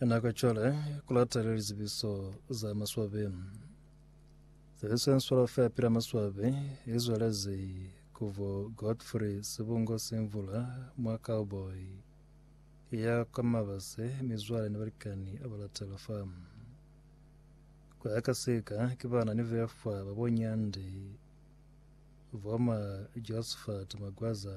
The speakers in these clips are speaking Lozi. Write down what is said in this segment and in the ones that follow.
Nako cwale ku latele lizibiso za maswabi. Tsebiso ya nswalo fa pila maswabi i zwelezi ku bo Godfrey Sibungo Simvula mwa Cowboy ya kwa Mabase, mizwale ni balikani ba latela fa. Ku ya ka sika ki bana ni befwa ba bo Nyandi, bo ma Josephat Magwaza,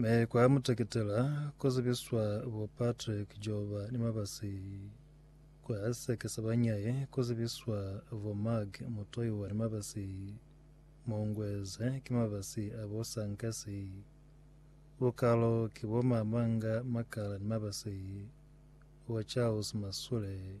Me kwa muteketela ko zibiswa bo Patrick Joba ni Mabasi kwa seke sa banyaye ko zibiswa bo Mark Mutoiwa ni Mabasi Mongweze ki mabasi a bo Sankasi Bukalo ki bo Mamanga Makala ni mabasi bo Charles Masule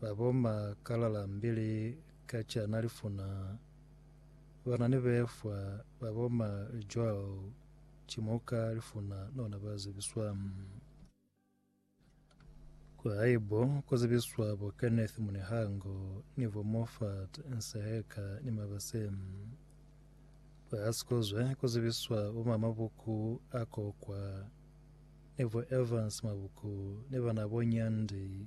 Ba bomba kalala mbili ka cana lifuna, bana ni befwa ba bomba lijwao cimuka lifuna nona ba zibiswa. Kwa haibo ku zibiswa bo Kenneth Munihango ni bo Moffat Nseheka ni Mabase. Kwa Hasikozwe ku zibiswa bo ma Mabuku a Kokwa ni bo Evans Mabuku ni bana bo Nyandi.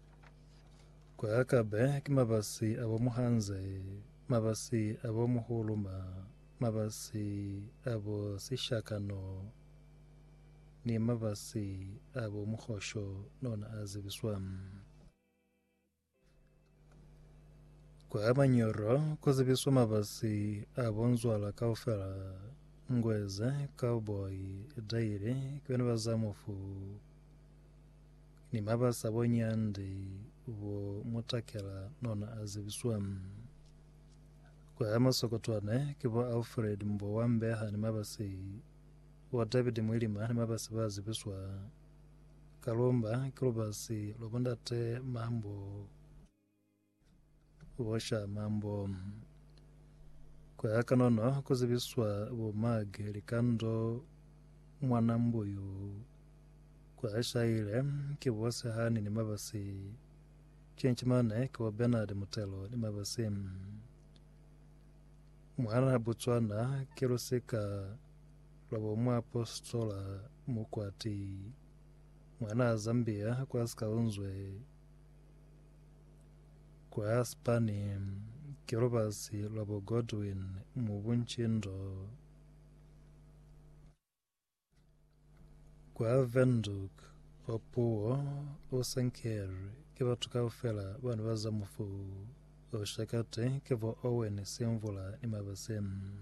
Kwa Akabe ki mabasi a bo muhanze, mabasi a bo muhuluma, mabasi a bo sishakano, ni mabasi a bo muhosho no na a zibiswa. Kwa Manyoro ku zibiswa mabasi a bo nzwala kaufela, Ngweze, Cowboy, Daily, ki bena ba Zamofu. ni mabasa bo nyandi bo mutakela nona a zibiswa. Kwa ya masokotwane ki bo Alfred Mbo wa Mbeha ni mabasi bo David Mwilima ni mabasi ba zibiswa. Kalomba ki lubasi lwa bo ndate Mambo. Busha Mambo. Kuya kanono kuzibiswa bo Mag Likando Mwanambuyu kuashaile ki bo Sehani ni Mabasi Chinchimane ki bo Bernard Mutelo ni Mabasi Mwana Botswana ki lusika lwa bo Muapostola Mukwati Mwana Zambia kwa Sikaunzwe Kwa Spani, ki lubasi lwa bo Godwin mu buncindo. Kwa Windhoek, Opuwo o senkelwi ki batu kaufela bana ba za mufu. Oshakati ki bo Owen Simvula ni Mabaseni.